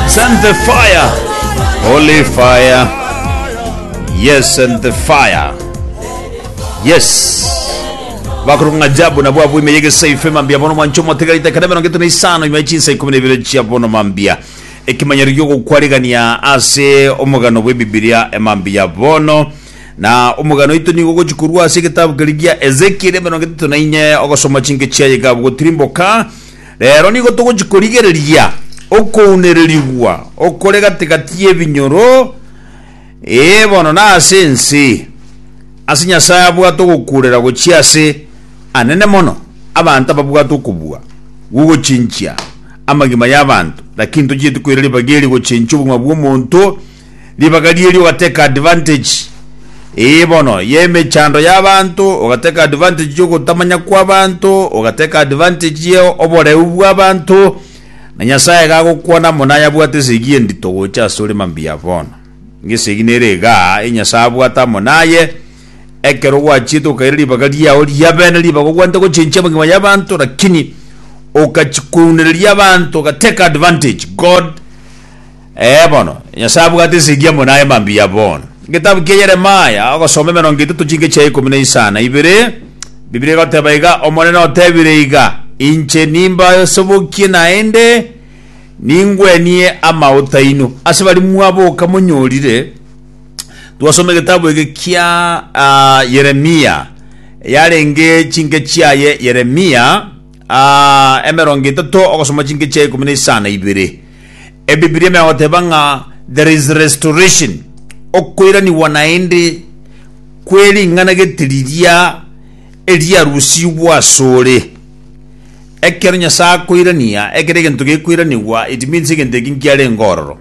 Send the fire. Holy fire. Yes, send the fire. Yes. bakurunga jabu na bwabu imeyege seife mambia bono mwancho motegarite kare mirongo itano isano nyuma y'echinsa ikumi na ibere chia bono mambia ekimanyero giogokwarigania ase omogano bw'ebibilia emambia bono na omogano oito nigo ogochi korwa ase egetabu keria gia ezekieli mirongo etato na inye ogosoma chinke chiaye gabu gotirimboka Rero nigo togochia korigereria okounererigwa okore gati gati y'ebinyoro, ee, bono nase ense, ase Nyasae abwate ogokuurera gochia ase anene mono, abanto ababwate okobua gw'ogochinchia amagima y'abanto, lakini tochieti koira ribaga eri gochinchia obogima bw'omonto, Ribaga ri'erio ogateka advantage, ee bono, y'emechando y'abanto, ogateka advantage y'ogotamanya kw'abanto, ogateka advantage ye oboreu bw'abanto, na Nyasaye iga agokwana amo naye abwate esegi endito gocha asore mambia bono. Ng'esegi nere iga, e Nyasaye abwate amo naye, ekero gwachiete okaira ribaga riao ri'abene, ribaga ogwanete gochenchia amagima y'abanto, lakini okachia kounereria abanto, ogateka advantage, God, Ee bono, Nyasae abwate ensinki amo naye mambia bono. Egetabu kia Yeremia, ogosoma emerongo etato chinke chia ikomi na isano na ibere, Bibilia egoteba iga, Omonene otebire iga, Inche nimbasobokie naende ningwenie amauta aino. Ase baria mwaboka monyorire, twasoma egetabu eke kia Yeremia, yarenge chinke chiaye Yeremia, emerongo etato ogosoma chinke chia ikomi na isano na ibere. Ebibilia megoteba ng'a there is restoration, okoiranigwa naende kwe ring'ana gete riria eriarusigwe asore. Ekero Nyasae akoirania, ekero egento gekoiranigwa it means egento eki nkiarenge ororo.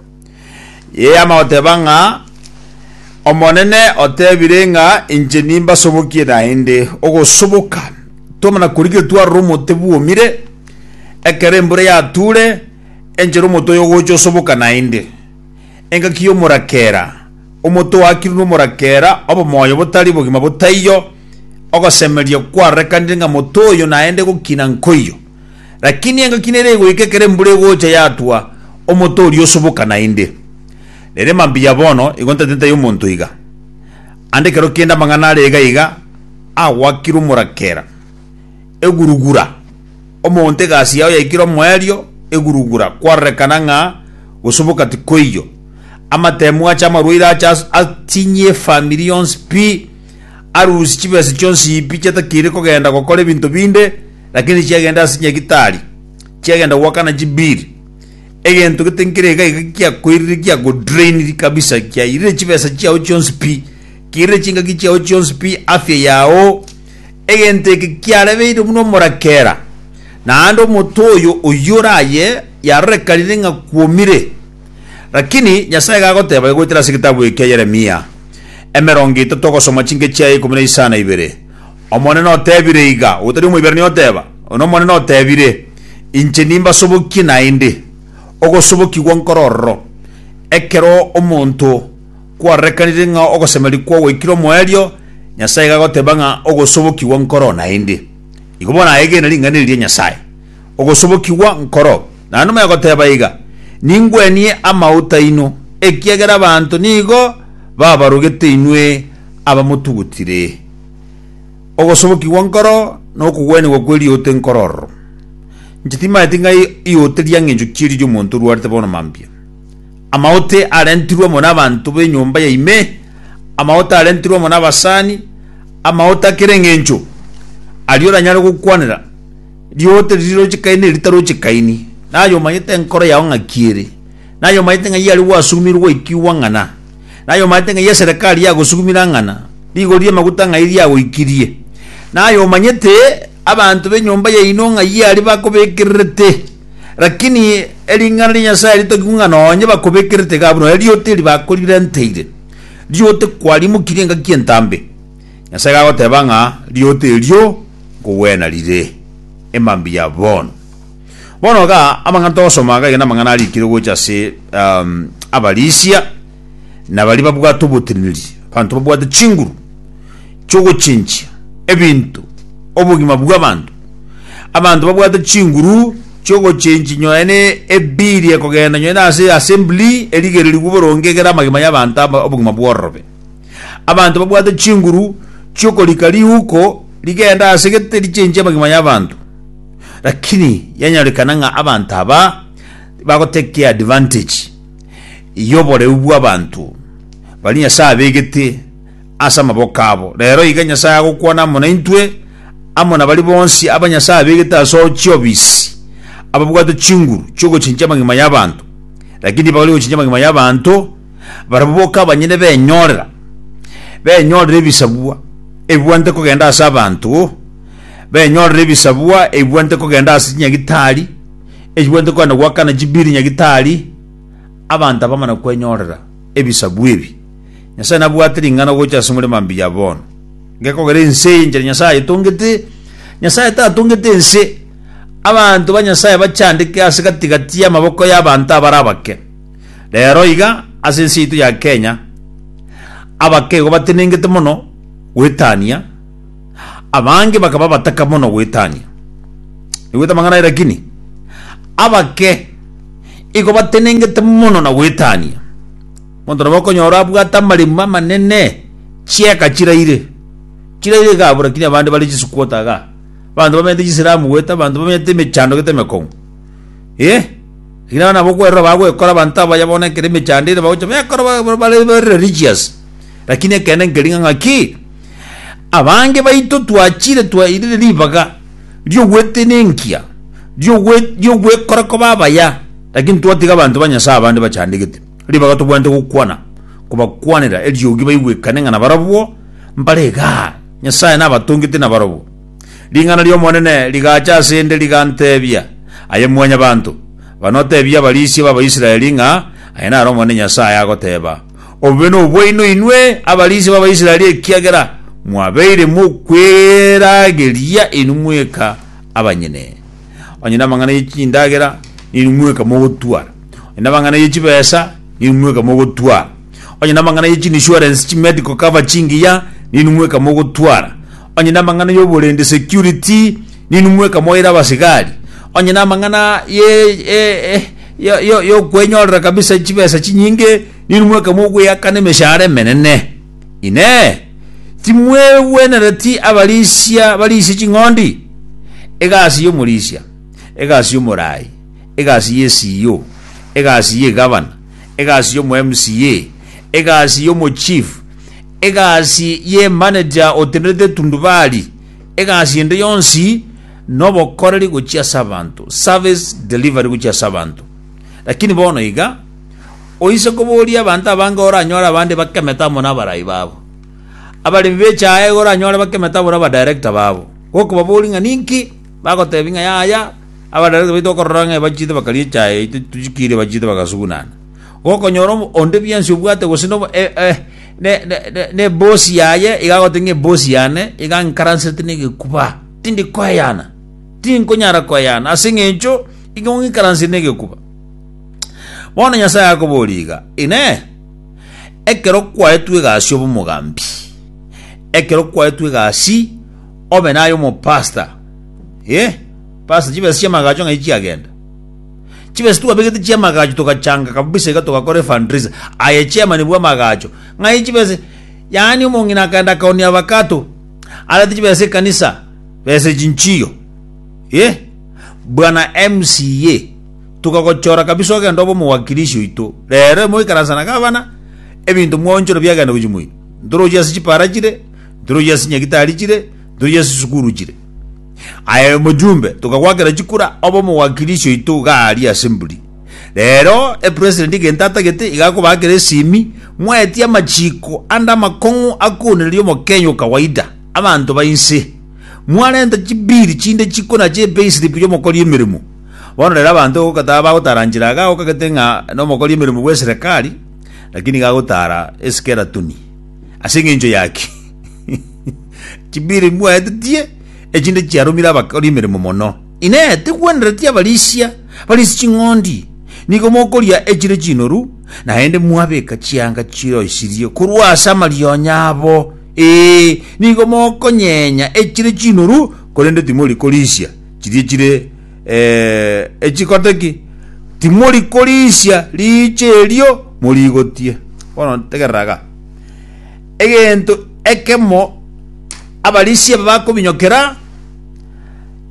Yeama goteba ng'a, Omonene otebire ng'a inche nimbasobokie naende ogosoboka, twamana korigia twarora omote bwomire, ekero embura yature, enchera omote oyo ogocha osoboka naende. Engaki y'omorakera, omote oakirwe n'omorakera, obomoyo botari bogima botaiyo, ogosemeria kwarorekanire ng'a mote oyo naende gokina nkoiyo. Lakini engaki nere egoika ekero embura egocha yatwa omote oria osoboka naende. Nere mambuya bono, igo ntateteia omonto iga. Ande ekero kende amang'ana are iga iga, agoakire omorakera, egurugura, omonto egasi yao yaikire omoerio, egurugura, kwarorekana ng'a gosoboka tikoiyo. Amatemu ache amarwaire ache as- atinye efamiri yonsi pi, arusie chibesa chionsi pi chiatakeire kogenda gokora ebinto binde, Lakini chiagenda ase nyagitari, chiagenda goakana chibiri, egento gete nkere iga iga giakoirire giagodrainiri kabisa, kiairire chibesa chiao chionsi pi, kiirire chingaki chiao chionsi pi, afya yao, egento eke kiarebeire buna omorakera, naende omonto oyo oyio oraye yarorekanire ng'a kwomire. Lakini Nyasae iga agoteba, Goetera ase egetabu ekia Yeremia, emerongo etato ogosoma chinke chiaye ikomi na isano na ibere, Omonene otebire iga, otari Omoiberania oteba, Onye Omonene otebire, Inche nimbasobokie naende ogosobokigwa nkore ororo, ekero omonto kwarorekanire ng'a ogosemeria kwagoikire omoerio, Nyasae iga agoteba ng'a ogosobokigwa nkoroo naende. Igo bono aegene ring'ana eri ria Nyasae, Ogosobokigwa nkoroo. Naende omonene agoteba iga, Ningwenie amauta aino, ekiagera abanto nigo babarogete inwe, abamotugutire, ogosobokigwa nkoro na okogwenigwa kwe rioote nkoro ororo. Inche timaeti ng'ai ioote ria ng'encho chi'erio ri'omonto orwarete bono mambia. Amaote arentirwe amo nabanto b'enyomba ya ime, amaote arentirwe amo nabasani, amaote a kera eng'encho, aria oranyare gokwanera rioote riria rochikaine na eritarochikaini, na aye omanyete enkoro yao ng'aki ere, na aye omanyete ng'ai aria gwasugumirwe gwaikigwa ng'ana. Naye omanyete ng'ai eserekari yagosugumire ang'ana, rigori ri'amaguta ng'ai riagoikirie, naye omanyete abanto b'enyomba yaino ng'ai aria bakobekererete, rakini ering'ana ria Nyasae ritogigwe ng'a nonye bakobekererete iga abwo nonye rioote eri bakorirenteire rioote kwarimokirie engaki entambe, Nyasae gagoteba ng'a rioote erio nkogwena rire emambia bono. Bono iga amang'ana togosoma iga, aye namang'ana arikirwe gocha ase Abarisia, na baria babwate oboteneneri, abanto babwate chinguru chi'ogochinchia ebinto, obogima bw'abanto, abanto babwate chinguru chi'ogochinchia nyonya ne ebiiri ekogenda nyonya ase assembly erigererigwe boronge egere amagima y'abanto aba obogima bwororobe. Abanto babwate chinguru chi'okorika riuko rigende ase gete richinchie amagima y'abanto. Lakini yanyorekana ng'a abanto aba tibagoteki advantage y'oboreu bw'abanto baria Nyasae abegete ase amaboko abo. Rero iga Nyasae agokwana amo naintwe, amo na baria bonsi aba Nyasae abegete ase chiobisi, ababwate chinguru chi'ogochinchia amagima y'abanto, lakini tibagori gochinchia amagima y'abanto, barabwo boka abanyene benyorera, benyorera ebisabwa ebibwanete kogenda ase abanto. benyorere ebisabwa ebibwanete kogenda ase chinyagitari, echibwanete kogenda goakana chibiri nyagitari, abanto abamana kwenyorera ebisabwa ebi. Nyasae nabwate ring'ana gocha ase omorema mbuya bono. Gekogera ense eye enchera Nyasae ayetongete, Nyasae tatongete ense, abanto ba Nyasae bachandeke ase gati-gati y'amaboko y'abanto abare abake. Rero iga, ase ense yaito ya Kenya, abake igo batenengete mono goetania, Abange bakaba bataka mono goetania. Naigwete amang'ana aye lakini abake igo batenengete mono na goetania. Monto nabo okonyora abwate amaremo amanene, chieka chiraire. Chiraire iga abwo lakini abande bare chisukuota iga. Abanto bamenyete chisiramu goeta abanto bamenyete emechando gete emekong'u. Eh, lakini abana nabo okwerora bagwekora abanto abaya bono ekero emechando ere bagocha bekora ba- ba- bare religious. Lakini ekeene nkeria ng'a ng'aki, Abange baito twachire twairire ribaga ri'ogwetenenkia, ri'ogwekora koba abaya, lakini twatiga abanto ba Nyasae abande bachandegete ribaga tobwenerete gokwana, kobakwanera eriogi baigwekane ng'a nabarabwo mbare igaa, Nyasae nabatongete nabarabwo. Ring'ana ri'Omonene rigacha asende, rigantebia, Aye Mwanyabaanto, bana otebie abarisia b'Abaisraeli ng'a, Aya naro Omonene Nyasae agoteba, Obobe nobwaino inwe abarinsi b'Abaisraeli ekiagera mwabeire mokwerageria inwe mweka abanyene. Onye namang'ana ye chindagera ninwe mweka mogotwara. Onye namang'ana ye chibesa ninwe mweka mogotwara. Onye namang'ana ye chinsurance, chimedical cover, chingiya ninwe mweka mogotwara. Onye namang'ana y'oborende, security, ninumwa ekamoira abasigari. Onye namang'ana ye e- e- yo- yo- yokwenyorera kabisa chibesa chinyinge, ninumwa ekamwa ogweakana emeshahara emenene. Inee! Timwegwenereti abarisia barisia ching'ondi? Egasi y'omorisia, egasi y'omorai, egasi ye CEO, egasi y'egavana, egasi y'omo MCA, egasi y'omochief, Egasi y'emanager otenderete tundubari, egasi ende yonsi nobokoreri gochia ase abanto, service delivery gochia ase abanto. Lakini bono iga, oise koboria abanto abange oranyore abande bakemete amo nabarai babo. Abaremi b'echae iga oranyore bakemete amo nabadirector babo. Gokobaboria ng'a ninki, bagotebi ng'a yaya, abadirector baito bakorora ng'a ebachete bakaria echae yaito tochikiire ebachete bagasugunana. Gokonyora obo- onde bionsi obwate gose nobo- e- e- ne- ne- ne- nebosi yaye, iga agote ng'a ebosi yane iga nkaransete negekuba. Tindi koeyana. Tinkonyara koeyana. Ase eng'encho igo ng'ikaransire negekuba. Bono Nyasae akoboria iga, Inee, ekero kwaetwe egasi obe omogambi, ekero kwaetwe egasi obe naye omopasta, eh, pasta chibesa chi'amagacho ng'ai chiagenda? Chibesa twabegete chi'amagacho togachanga kabisa iga togakora efundraiser aye chairman bw'amagacho ng'ai chibesa yaani omong'ina akaenda akaonia abakato arete chibesa ekanisa besa chinchiyo ye bwana MCA tukagochora kabisa ogenda obo omowakilishi oito rero emo ikaransa na gavana ebinto mwaonchora biagenda gochia moino ntorochia ase chipara chire ntorochia ase nyagitari chire ntorochia ase sukuru chire Aye mojumbe tokagwakera chikura obe omogwakiri isyo oito iga aria ase mburi. Rero e president egento atagete iga akobakera esimi mwaetie amachiko ande amakong'u akoonereria omokenya o kawaida. Abanto ba inse mwarenta chibill chinde chiko na chi payslip y'omokori emeremo. Bono rero abanto gokata bagotara nchera iga gokagete ng'a nomokori emeremo bw'eserekari lakini iga agotara eskeratoni. Ase eng'encho yaki? Chibiri mbwaetetie, echinde chiaromire abakori emeremo mono. Inee! Tigwenereti abarisia barisi ching'ondi? Nigo mokoria echire chinoru, naende mwabeka chianga chiroisirie korwa ase amarionya abo. Ee, nigo mokonyenya echire chinoru, korende timori korisia chiria chire eh, echikote ki? Timori korisia riicho erio morigotie. Bono tegerera iga. Egento ekemo abarisia aba bakominyokera,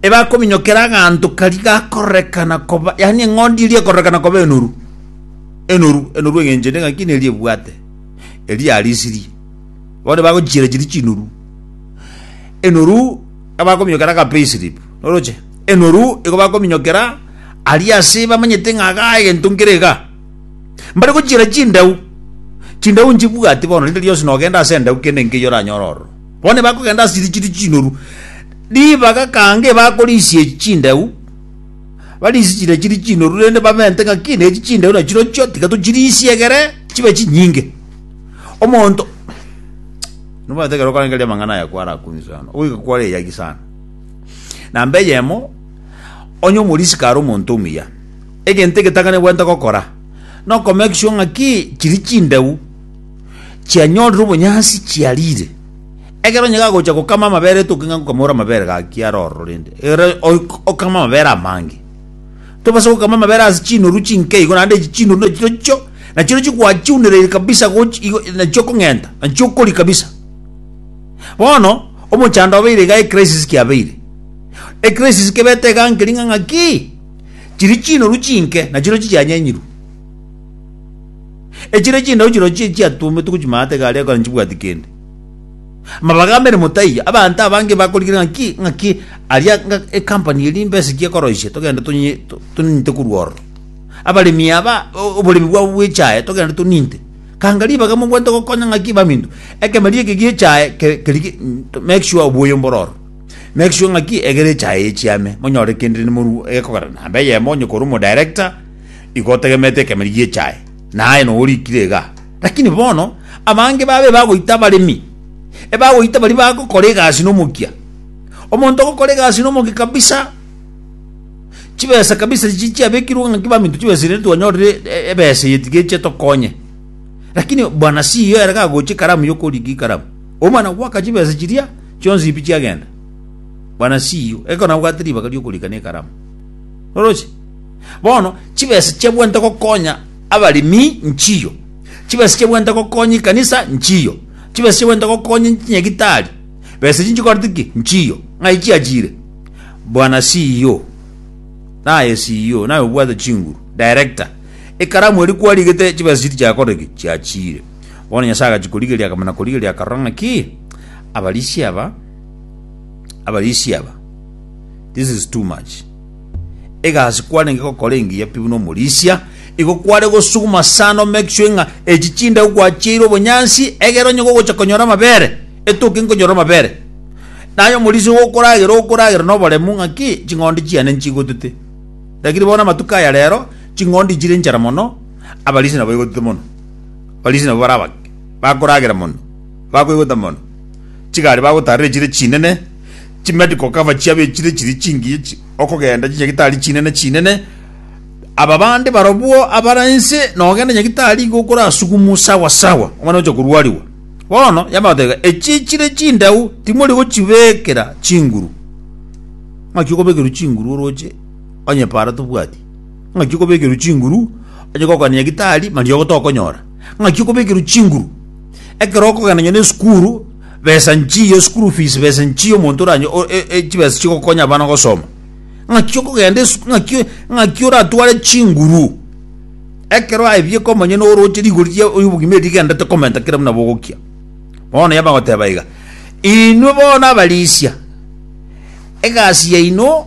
ebakominyokera aganto karia gakorekana koba, yaani eng'ondi eria ekorekana koba enoru, enoru, enoru eng'encho ende ng'aki neria ebwate, eria yarisirie. Bono bagochiera chiria chinoru, enoru abakominyokera aga pay slip, oroche? Enoru igo bakominyokera aria ase bamanyete ng'a igaa egento nkere igaa. Mbare gochiera chindau, chindau nchibwati bono, rinde rionsi nogenda ase endau kende enke eyio oranyore ororo. Bono nibakogenda ase chiria chiri chinoru, ribaga kanga ebakorisia echi chindau, barisie chiria chiri chinoru, rende bamente ng'aki na echi chindau nachirochio tiga tochirisia egere chibe chinyinge. Omonto nobwate ekero okarangeria amang'ana aya kwarakumie sana, ogoika kware eyagi sana. Namba eyemo, onye omorisiko are omonto omuya, Egento egetakanebwate gokora nokomenya egisio ng'aki chiria chindeu chianyorire obonyansi chiarire. Ekero onye gagocha gokama amabere etoke ng'a ngokamore amabere gaki are ororo rende ere okame amabere amange. Tobasa gokama amabere ase chinoru chinke igo naende echi chinoru nachi tochio nachire chikwachiunereiri kabisa gochi igo nachio okong'enta nachio okori kabisa. Bono omochando obeire iga ecrisis kiabeire, ecrisis kebete iga nkeria ng'a ng'aki. Chiri chinoru chinke, nachirochio chianyenyirwe, echire chindabu chirochio echiatuometwe gochia maate igare ekogera nchibwati kende. Amabaga ameremo taiyo, abanto abange bakorigereria ng'aki ng'aki aria ng'a ecompany eria mbesa ki ekoroisia togende tonye to- toninte korwa ororo. Abaremi aba o- oboremi bwabo bw'echae togende toninte. Kanga ribaga mobwate gokonya ng'aki baminto, ekemeria eke gi'echae ke- kerigi to make sure obuya mbore ororo. Make sure ng'aki egere echaye echiame, monyore kende nimorue egekogera namba eyemo onye korwa omoDirector igo otegemerete ekemeri gi'echaye, na aye nogo orikire igaa. Lakini bono abange baaba ebagoita abaremi, ebagoita baria bagokora egasi nomokia. Omonto ogokora egasi nomokia kabisa, chibesa kabisa echi chiabekirwe ng'aki baminto chibesa eria twanyorire ebesa eye tiga eche etokonye. Lakini bwana CEO ere gagochia ekaramu yokorigia ekaramu, omwana goaka chibesa chiria. Chionsi pi chiagenda. Bwana CEO, ekero nabwate ribaga ri'okorika na ekaramu. Noroche? Bono, chibesa chiabwenerete gokonya abaremi, nchiyo. Chibesa chiabwenerete gokonya ekanisa, nchiyo. Chibesa chiabwenerete gokonya chinyagitari, besa echi nchikorete ki? Nchiyo. Ng'ai chiachire? Bwana CEO, naye CEO, naye obwate chinguru, director, ekaramu eria kwarigete chibesa chiria chiakorire ki? Chiachire. Bono Nyasae agachia korigereria akamana korigereria akarora ng'aki abarisia aba abarisia aba this is too much egasi kwarenge gokora engiya pi buna omorisia igo kware gosuguma sana make sure ng'a echi chindau gwachiire obonyansi egere onye gogocha konyora amabere etoke nkonyora amabere naye omorisia igo okoragera okoragera na oboremu ng'aki ching'ondi chiane nchigotete lakini bono amatuko aya rero ching'ondi nchire nchara mono abarisia nabo baigotete mono. Abarisiri nabo bare abake, bakoragera mono, bakoigota mono, chigari bagotaarera echire chinene, chimedical cover chiabo echire chiri chingiya chi- okogenda chinyagitari chinene chinene, aba bande barobwo abare inse, nogenda nyagitari iga okorasukumwa sawa sawa, omwana oche korwariwa. Bono yamanya goteba, echi chire chindau timori gochibekera chinguru, naki okobekerwa chinguru oroche onye para tobwati. Ng'aki okobekerwa chinguru onye gokoanania gitari mariogo tokonyora? Ng'aki okobekerwa chinguru ekero okogenda nonya nesukuru besa nchiya school fees besa nchiya omonto oranye o- e- e- chibesa chigokonya abana gosoma ng'aki okogenda esu- ng'aki ng'aki oratware chinguru ekero aye bieka omonyene oroche rigori ria obogima eri rigendete komenta kera buna bogokia. Bono yaba goteba iga, inwe bono abarisia egasi yaino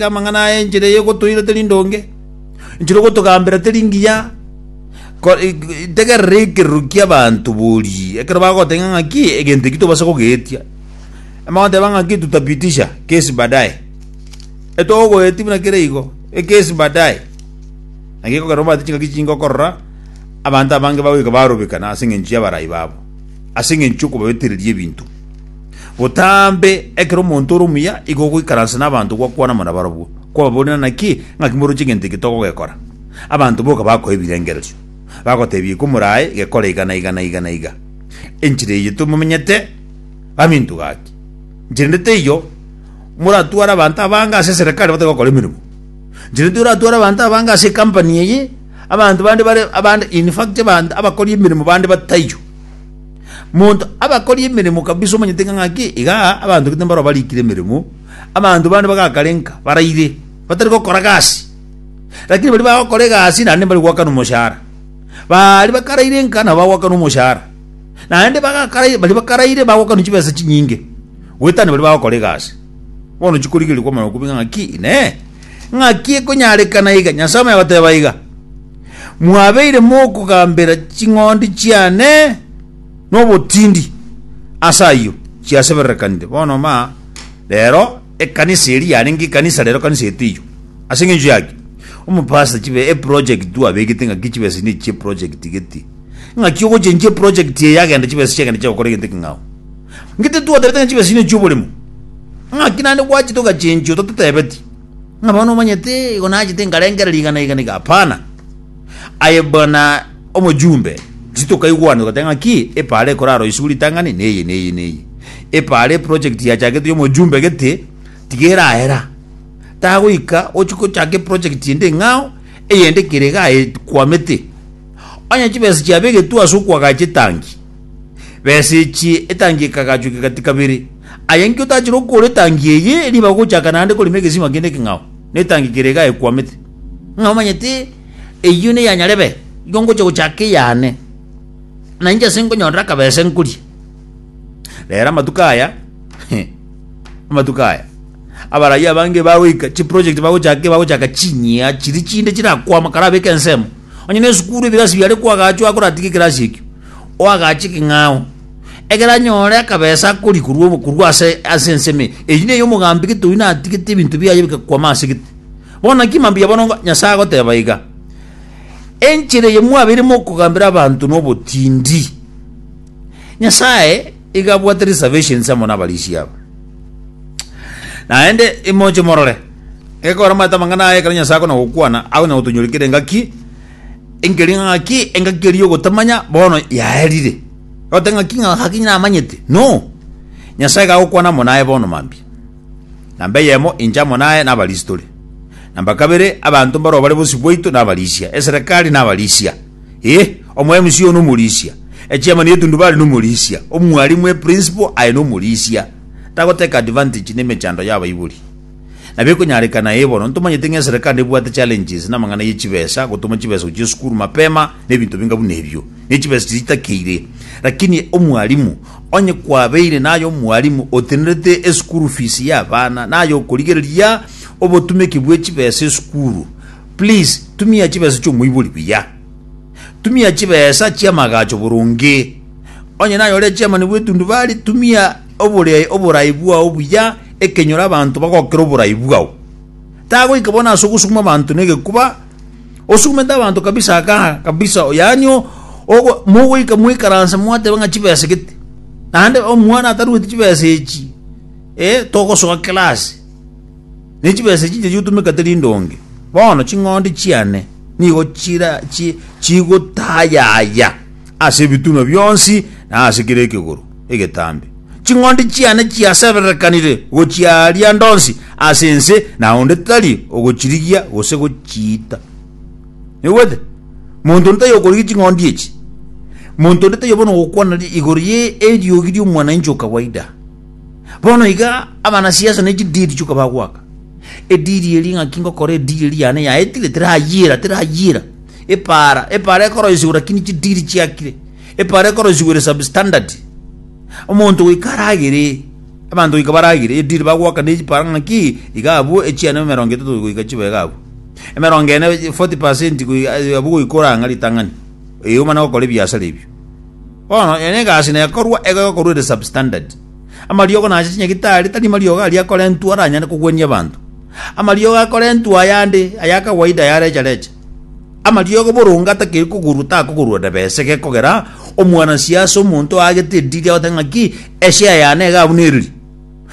Amang'ana aya enchera eye gotoira teri ndonge, enchera ogotogambera teri ngiya. Ko- e- e- Tegerera ekerero ki'abanto borie, ekero bagoteba ng'aki egento eki tobasa kogeetia. Amagoteba ng'aki tutapitisha kesi baadaye. Etogoeti buna kere igo, ekesi baadaye. Naki ekogera omanyete chingaki chinge okorora, abanto abange bagoika barobekana ase eng'encho y'abarai babo, ase eng'encho y'okobabetereria ebinto. Botambe ekero omonto ore omuya igo ogoikaransa n'abanto gwakwana amo nabarabwo, kwababoria naki, ng'aki moroche egento eke togogekora? Abanto boka bakoa ebirengererio, bagotebia iko morae gekore iga na iga na iga na iga. Enchera eye tomomenyete gaminto gaki. Nchera ende teiyo moratware abanto abange ase eserekari batari gokora emeremo. Nchera ende teiyo oratware abanto abange ase ecompany eye, abanto bande bare abande in fact abanto abakori emeremo bande bataiyo. Monto abakori emeremo kabisa omanyete ng'a ng'aki iga abanto gete mbaroo barikire emeremo, abanto bande bagakarenka baraire, batari gokora gasi. Lakini baria bagokora egasi naende mbari goakana omoshahara. Baria bakarairenka nabo bagoakana omoshahara. Naende bagakarai baria bakaraire bagoakanwa chibesa chinyinge goetania baria bagokora egasi. Bono chikorigereria kwamana okobua ng'a ng'aki inee, ng'aki ekonyarekana iga? Nyasae omonyene agoteba iga, mwabeire mokogambera ching'ondi chiane nobotindi, ase ayio chiasebererekanire. Bono ma rero ekanisa eria yarenge ekanisa rero ekanisa eteiyo. Ase engencho yaki? Omopastor chibe eproject twabegete ng'aki chibesa ne chie project gete. Ng'aki ogochenchi eproject eye yagenda chibesa chiagenda chiagokora egento ekeng'ao. Ng'ite twaterete ng'a chibesa echi ne chioboremo. Ng'aki naende gwachete ogachenchia otatotebeti. Ng'a bono omanyete igo nachete nkarengera rigana iga na iga? Hapana. Aye buna omojumbe, gose tokaigwana ogoteba ng'aki epaara ekorara oiswe ritang'ani neye neye neye. Epaara eproject yachaketwe ya omojumbe gete, tiga erahera, tagoika ochia gochaka eproject ende eng'ao, eyende kere igaa ekwamete. Onye chibesa chiabegetwe ase okoagacha etangi, Besichie etangi ekagachwa ekegati kabere. Aye inki otachire okoora etangi eye riba ogochaka naende korema egesima kende ekeng'ao, na etangi kere iga ekwamete? Ng'a omanyete eyio neya nyarebe, igo ngocha gochaka eyane, na inche ase nkonyorera akabesa nkorie. Rero amatuko aya amatuko aya abarai abange bagoika chiproject bagochaka bagochaka chinyia chiri chinde chirakwama karabeka ensemo Onye nesukuru ebirasi biare ko agaachwa akoratiga ekerasi ekio, oagaache ekeng'ao, ekero anyore akabesa akoria korwa obo korwa ase ase ensemo eye. Eyi neye omogambi gete oyio natigete ebinto biaye bigakwama ase gete. Bono naki mambia bono ngo Nyasae agoteba iga, Enchera eye mwabeire mokogambera abanto nobotindi. Nyasae. Igo abwate reservations amo nabarisia aba. Naende imoche morore, ekero omanyete amang'ana aya, ekero Nyasae akona gokwana, akonya gotonyorikera engaki, enkeri ng'aki, engaki eria ogotamanya, bono yaerire. Ote ng'aki ng'a ng'aki namanyete? No! Nyasae iga agokwana amo naye bono mambia. Namba eyemo, inche amo naye nabarisi tore. Namba kabere, abanto mbarobare bosio bwaito nabarisia. Eserekari nabarisia. Ee, omo-MC oyo nomorisia, echairman y'etundubari nomorisia, omwalimu, eprinciple, aye nomorisia. Tagotake advantage nemechando y'abaibori. Nabo ekonyarekana ee bono, ntomanyete ng'a eserekari nebwate challenges namang'ana ye chibesa, gotoma chibesa gochia esukuru mapema, nebinto binga buna ebio, ne chibesa chiria chitakeire. Lakini omwalimu, onye kwabeire naye omwalimu otenerete esukuru fees y'abana, naye okorigereria obotumeki bw'echibesa esukuru, Please tumia chibesa chi'omoibori buya. Tumia chibesa chi'amagacho boronge. Onye naye ore chairman bw'etundubari, tumia obore oborai bwao buya ekenyoro abanto bagokera oborai bwao. Tagoika bono ase ogosuguma abanto n'egekuba, osugumete abanto kabisa aka kabisa yaani o- ogo- mogoika moikaranse mwateba ng'a chibesa gete. Naende omwana atarueti chibesa echi, eh, togosoa class. Ne chibesa chiria chiotomekete rinde onge, bono ching'ondi chiane nigo chira chi- chigotayaya ase ebitunwa bionsi na ase kera ekegoro egetambe. Ching'ondi chiane chiasebererekanire gochiaria ndonsi ase ense, na onde tari ogochirigia gose gochiita. Noigwete? Monto onde taiyo okorigia ching'ondi echi. Monto onde taiyo bono ogokwana ri- igoro ye eriogi ri'omwananchi o kawaida. Bono iga abanasiasa ne chidiri chionka bagoaka ediri eria ng'aki ngokora ediri eria yane yaetire, terayiira, terayiira. Epaara, epaara ekoroisigwa lakini chidiri chiakire. Epaara ekoroisigwa ere substandard. Omonto goika aragere, abanto goika baragere, ediri bagoaka ne epaara ng'aki iga abwo echiane emerongo etato goika chibe iga abwo. Emerongo ene 40% goi- abwo goika orang'a ritang'ani. Ee omana gokora ebiasara ebio. Bono, eye negasi nekorwa ego egokorwa ere substandard. Amariogo nache chinyagitari, tari mariogo aria akorentwa aranyare kogwenia abanto. Amariogo akorentwa ayande, aya akawaida ya recha recha. Amariogo boronge atakeri kogorwa takogorwa nebese gekogera omwanasiasa omonto oagete ediri agote ng'aki eshare yane iga abune eriri.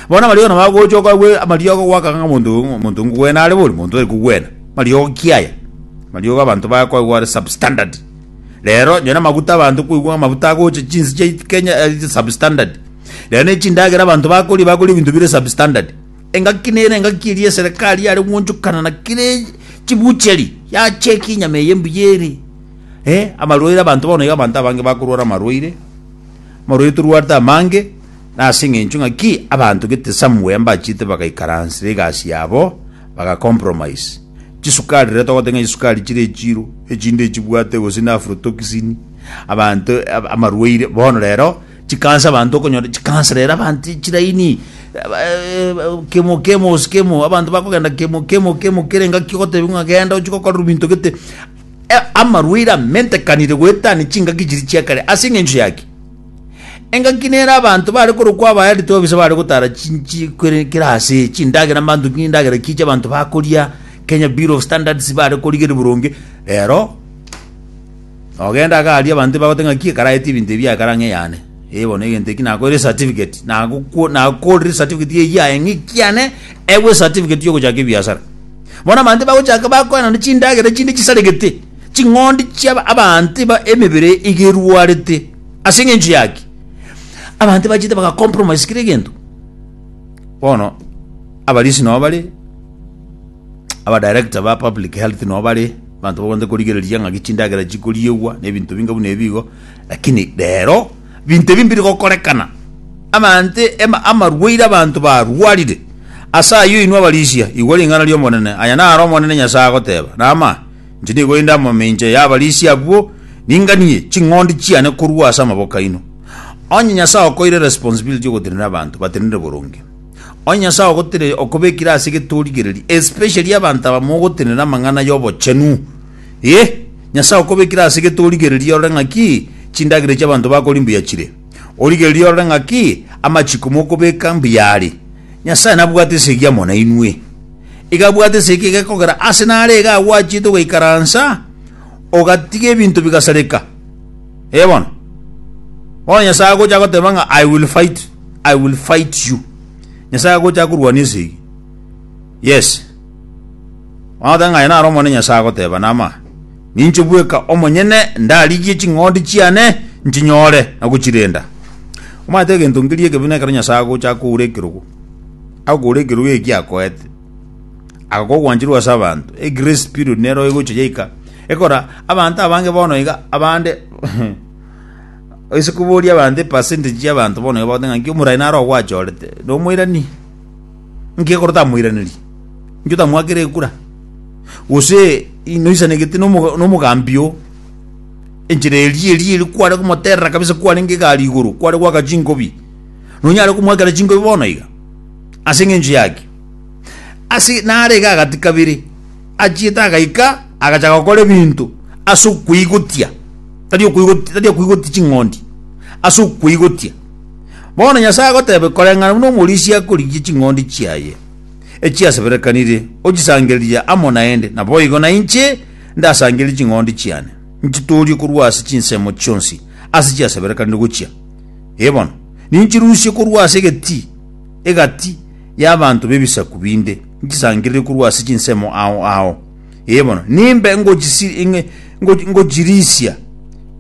Bono amariogo nabo agocha okagwe amariogo gwaka ng'a omonto oyo omonto ngogwena are bori, omonto tari kogwena. Mariogo ki aya? Mariogo abanto bakoigwa are substandard. Rero onye namaguta abanto koigwa amaguta agocha chinsi chia Kenya eh, substandard rero ne chindagera abanto bakoria bakoria ebinto bire substandard engaki nere engaki eri eserikali yare gwonchokana na kire chibucheri yacheki enyama eye mbuya ere eh, amarwaire abanto bono iga abanto abange bakorwara amarwaire amarwaire torwarete amange nase eng'encho ng'aki abanto gete somewhere mbachete bagaikaransera egasi yabo bagacompromise Chisukari, riria togoteba ng'a chisukari chire echiro, echinde echibwate gose na aflotoxin, abanto ab- amarwaire, bono rero chikansa abanto okonyora chikansa rero abanto chilaini aba- eh, ba- kemo kemo gose kemo, abanto bakogenda kemo kemo kemo kere engaki ogotebiwa ng'a genda ochie gokorera ebinto gete. Eh, amarwaire amentekanire goetania chingaki chiria chiakare, ase eng'encho yaki? Engaki nere abanto bare korokwa abaeritwe babisa bare gotara chinchi kwere kera ase chindagera mbanto ki ndagera ki chiabanto bakoria Kenya Bureau of Standards bare korigeria boronge rero ogenda iga aria abanto bagote ng'aki ekaraete ebinto ebi ekara ng'a eyane eh bono egento eki nakoeire certificate nagokwo nakorire certificate eye yaye ng'a ekiane ewe certificate yogochaka ebiasara bono abanto bagochaka bakoenana chindagera chinde chisaregete ching'ondi chia abanto ba emebere iga erwarete. Ase engencho yaki abanto bachete baga compromise kire egento. Bono abarisi nabo bare abadirector ba public health nabo bare abanto bagwanete korigereria ng'aki chindagera chikoriegwa na ebinto binga buna ebigo lakini rero binto ebi mbiri gokorekana abanto ema- amarwaire abanto barwarire ase ayio inwe abarisia igwa ring'ana ri'omonene aya naro omonene nyasae agoteba nama Inche nigo inde amamincha y'abarisia abwo, ninganie ching'ondi chiane korwa ase amaboko aino. Onye Nyasae okoeire responsibility y'ogotenena abanto batenenere boronge, onye Nyasae ogotire okobekire ase getorigereria, especially abanto aba mogotenena amang'ana y'obochenu, eh, Nyasae okobekire ase getorigereria orore ng'aki chindagera echi abanto bakori mbuya chire, origererie orore ng'aki amachiko mokobeka mbuya are. Nyasae nabwate esegi amo nainwe. igabwata esegi egekogera ase nare iga agwachete ogaikaransa ogatiga ebinto bigasareka ee bono bono nyasae agocha agoteba ng'a i will fight i will fight you nyasae agocha akorwania esegi yes Wagoteba ng'a aye naro omone nyasae agoteba nama ninche bweka omonyene ndarigie ching'ondi chiane nchinyore na gochirenda omanyete egento nkeria ekebe nekero nyasae agocha akoura ekerogo agokora ekerogo eki akoete, agakoa ogwancherwa ase abanto, e grace period nero egocha yaika, ekora abanto abange bono iga abande ase koboria abanto epercentage ya abanto bono iga bagotebi ng'aki omoraia naro ogwachorete, nomoirani, nki ekero tamoiraneri? Nki otamwakire ekura? Gose noisanegete nomo nomogambi oo, enchera eria eria eria kware komoterera kabisa kwarenge egari igoro, kware goaka chingobi. nonyare komoakera chingobi bono iga, ase engencho yaki. Ase nare iga agati kabere, achiete agaika, agachaka gokora ebinto ase okoigotia, tari okoigotia, tari okoigotia ching'ondi, ase okoigotia. Bono Nyasae agotebe, koreng'ana buna omorisia akorigia ching'ondi chiaye echiaseberekanire, ochisangererie amo naende, naboigo nainche ndasangererie ching'ondi chiane, nchitoorie korwa ase chinsemo chionsi ase chiaseberekanire gochia. Ee bono, ninchirusie korwa ase egetii egati y'abanto b'ebisaku binde, nchisangerere korwa ase chinsemo ao ao, ee bono, nimbe ngochisi- nge- ngo- ngochirisia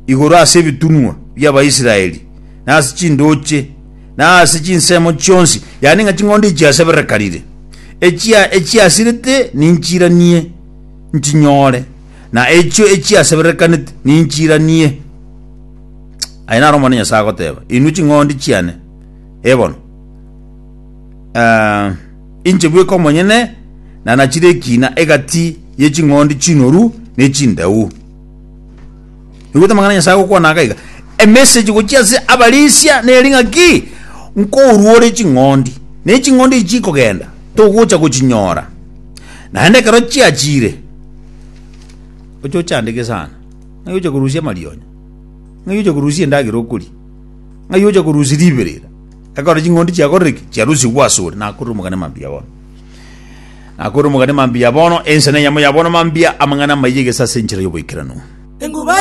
igoro ase ebitunwa bi'Abaisraeli, na ase chindooche, na ase chinsemo chionsi, yaani ng'a ching'ondi echiaseberekanire, echia echiasirete ninchiranie nchinyore, na echio echiaseberekanete ninchiranie. Aye naro Omonene Nyasae agoteeba, Inwe ching'ondi chiane, ebono, eh, inche bweka omonyene nanachire ekina egati ye ching'ondi chinoru ne chindeu. Rigwete amang'ana Nyasae gokwana aka iga, emessage gochia ase abarisia neri ng'aki, nkoruore ching'ondi, ne ching'ondi echi chikogenda, togocha gochinyora. Naende ekero chiachire, oche ochandike sana. Ng'ai ocha korusia amarionya? Ng'ai ocha korusia endagera okoria? Ng'ai ocha korusia riberera? Ekero ching'ondi chiakorire ki? Chiarusigwe asore, nakorire omogane mambia bono. Nakorire omogane mambia bono, ensemo eyemo ya bono mambia, amang'ana amayia egesa ase enchera y'oboikeranu.